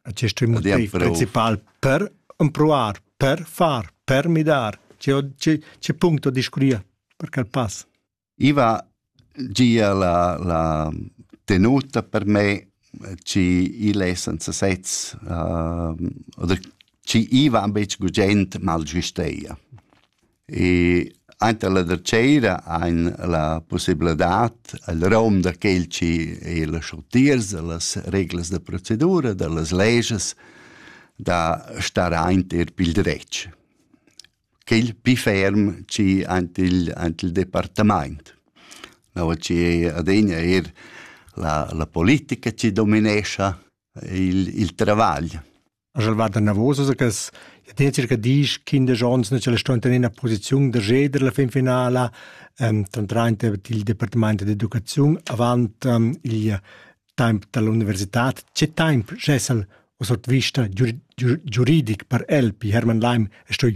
Acest e motiv principal per empruar, per far, per midar. Ce, ce, ce punto discuria per quel pass? Iva gia la, la tenuta per me ci il è senza sez uh, oder ci iva am bec gugent mal giusteia. E ainter la darchera hain la pussibladad al rom da quel chi ei las utiers, da las reglas da procedura, da las leges, da star aint eir pil dretg. Quel pi ferm chi aint il, aint il departamaint. No, chi ei adegna eir la, la politica chi dominescha il, il travagl. Sch'el va danavos a cas, ja ten circa diesch, quindesch ons, na ch'el sto in ina posiziun da ceder la fin finala, ehm, trantrainte til departamaint d'educaziun avant ehm, il temp dall'università. Che temp schessel o sot vista giur- giur- giuridic per el pi Hermann Leim stoi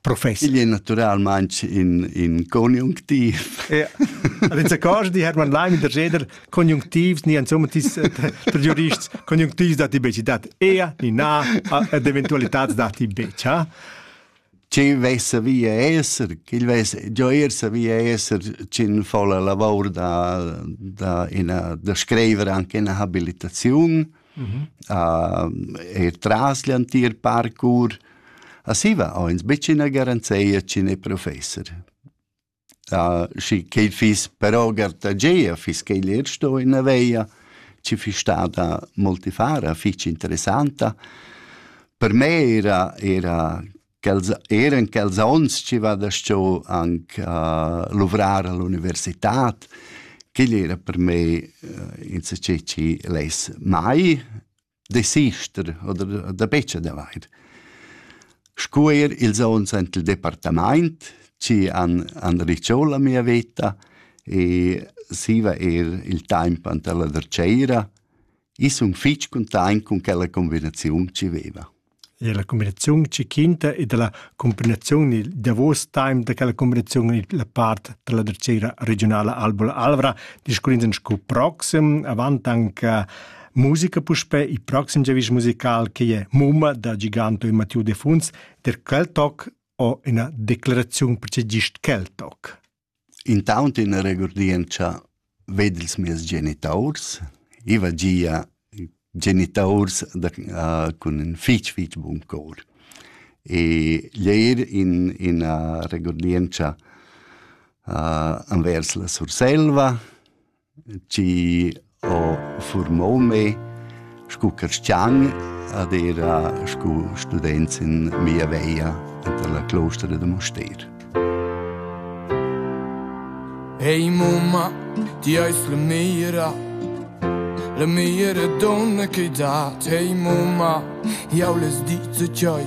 Professor. Igl è naturalmain in, in conjunctiv. ja. Allez accords di Hermann Leim in der Jeder conjunctivs ni insomma tis der jurists conjunctivs dati beci dat ea ni na ed eventualitats dati beci. Ha? Ci vessa via esser, il vess gioir sa via esser cin fa la lavor da da ina da screiver anche ina habilitaziun. mhm. uh, e tras l'entir parcours. A siva ho ins betg ina garanzia ch'in è professor. Uh, schi che fiss però gartageia, fiss che l'er sto in aveia, ci fiss stata multifara, fitch interessanta. Per me era, era quels eran quels onns chi va da sto anche a luvrar all'universitad quel era per me eh, in se che chi less mai desister oder da becce da vair Scuer ils ons ant il departament, ci an, an riciò la mia veta e siva er il temp ant alla Derceira. I sun fitg content con quella combinaziun ci veva. e la cumbinaziun tschichinta e dalla cumbinaziun il davos time da quella cumbinaziun en la part dalla dretgira regiunala Albola Alvra discurrins en sco proxim avant anche musica puspè il proxim giavisch musical che è Mumma da Giganto e Mattiu de Funs der Keltock o ina declaraziun per gist Keltock. Intaunt üna regurdientscha vegn ils mieus genitaurs. I va gia genitaurs da cun ün fich fich bun cor. E l'eir in üna regurdientscha envers la Surselva chi ho furmou me scu carstgian ed era scu student in mia veia anta la clostra da Mustér. Ehi mumma, ti eis la meira La meira donna che dat Ehi mumma, jau les dice cioi